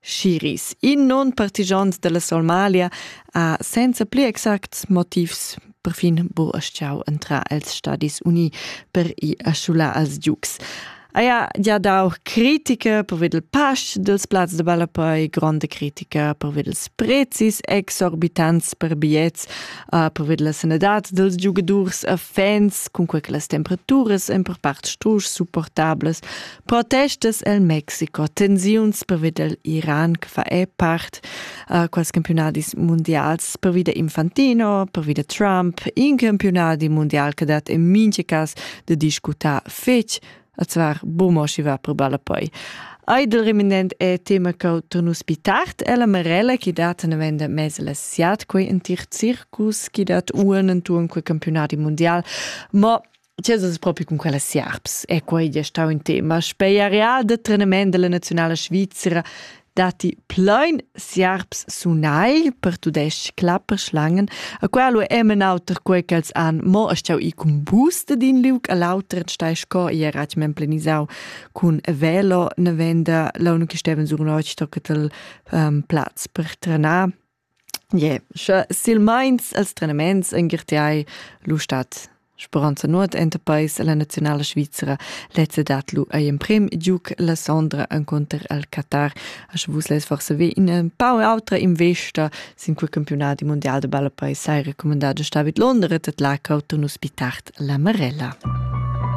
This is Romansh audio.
Schiris, in non partigiant della Somalia, ha senza pli exacts motivs perfin buraschiau entrar els Stadis Uni per i aschular als Ducs. Haja ja dau critica per il pasch dels plazs de Balapoi, gronda critica per ils prezis exorbitants per biets, uh, per la sanadad dels giugadurs a fans, cun quei che las temperaturas en per part strusch supportables Protestas el Mexico, tensiuns pervi del Iran che fa è part uh, quals campionadis mundials pervi da Infantino, pervi da Trump, in campionadi mundial che dat in mincha cas de discutar fetg, a zvar bomo si va per balla poi. Eidel reminent è tema che tu nus tard è la Marella che dat una venda mezza la siat quei in tir circus che dat unen tu in quei campionati mondial, ma Ti es propi cun quella siarps e quei è stau in tema speiarià de trenament della nazionala Svizzera datti plein siarps sunai per tudesc clapper schlangen a quel lu emen auter quei ch'els han mo astau i cun bus de din liug all'auter stai sco ia rat men plenisau cun velo ne venda la unico steven sur notg tocca tel um, platz per trenar Ie, scha silmaints e'ls trenaments ungirtiai lur stat speranza nuot enta peis a la naziunala svizra. Lez ha dat lur eir imprem giug la sondra encunter il Qatar. A sche vus lez forsa ve ina pau autra investa sin quel campiunadi mundial da ballapei, sai recumandà da sta vid Londra, tet là cauto nus pi tard la Marella.